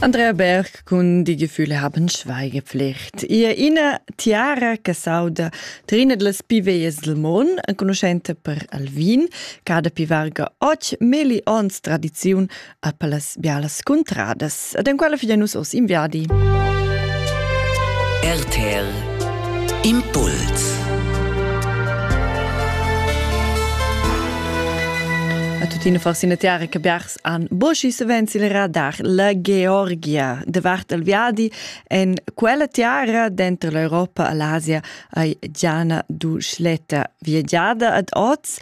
Andrea Berg cun die Gefühle haben Schweigepflicht. Ia ina tiara che sauda trina dlas piveias del mon, enconuschenta per Alvin, cada pivarga och meli ons tradiziun a palas bialas cuntradas, ad en quella figlia nus os inviadi. RTL Impuls A tuttina forse una tiara che biars han Boschi savens il radar la Georgia davart il viadi en quella tiara denter l'Europa e l'Asia ei Gianna Duschletta viagiada ad oz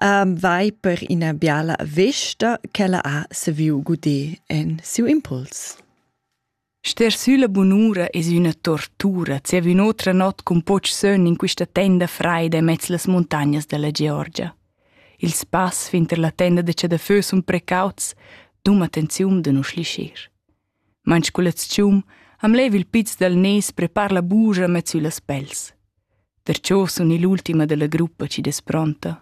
um, vai per ina biala vesta che la ha saviu guder en siu impuls. Ster sülla bunura es üna tortura zieva ün'otra not cun poch sön in quista tenda fraida immez las muntagnas della Georgia. Il spass finter la tenda da chadafö sun precauts, dum attenziun da nu schlischir. Manch culatschum am lev il piz dal nes prepar la buja mez sü las pels. Perciò sun ill'ultima della gruppa chi es pronta.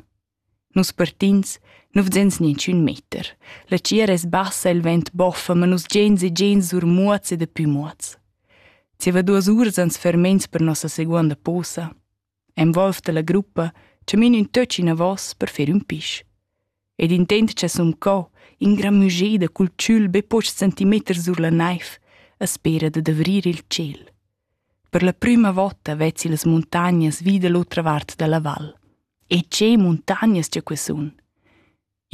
Nus partins, nu vzens ninchün meter. La tgiera es bassa, il vent boffa, ma nus giains e giains sur muots e dapü muots. Zieva duos uras ans fermains per nossa seguonda posa. E'm volv da la gruppa, chamin ün töch inavos per fer ün pisch. Ed intent cha sun co, ingramügeda cul tschül be pochs centimeters sur la naiv, a spera da davrir il tschel. Per la prüma vota vezzi las muntagnas vi da l'otra vart da la val. E tge muntagnas gia que sun!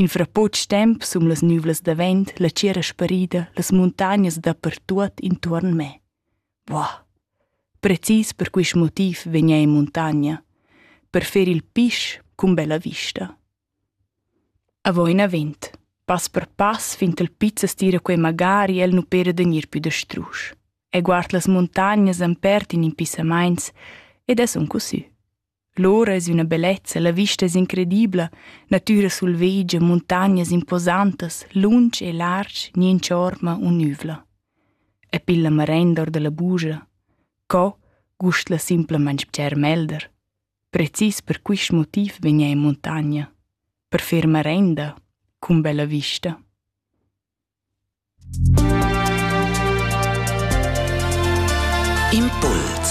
In fra poch temp sun las nüvlas davent la tschiera sparida las muntagnas dapertuot intuorn me. Buah! Precis per quist motiv vegna in muntagna, per fer il pisch cun bella vista. Avo inavant, pass per pass fin ch'el pizza stira quei magari el nu pera da gnir pü da strusch. E guard las muntagnas ampert in impissamaints ed es un cosü. Lora es üna bellezza, la vista es incredibla, natüra sulvedgia, muntagnas imposantas, lunsch e larsch, niente orma unüvla. E pil la marenda or dalla bugia. Co gust la simplamaing bger melder. Precis per quist motiv vegna in montagna. Per fer marenda, cun bella vista. Impuls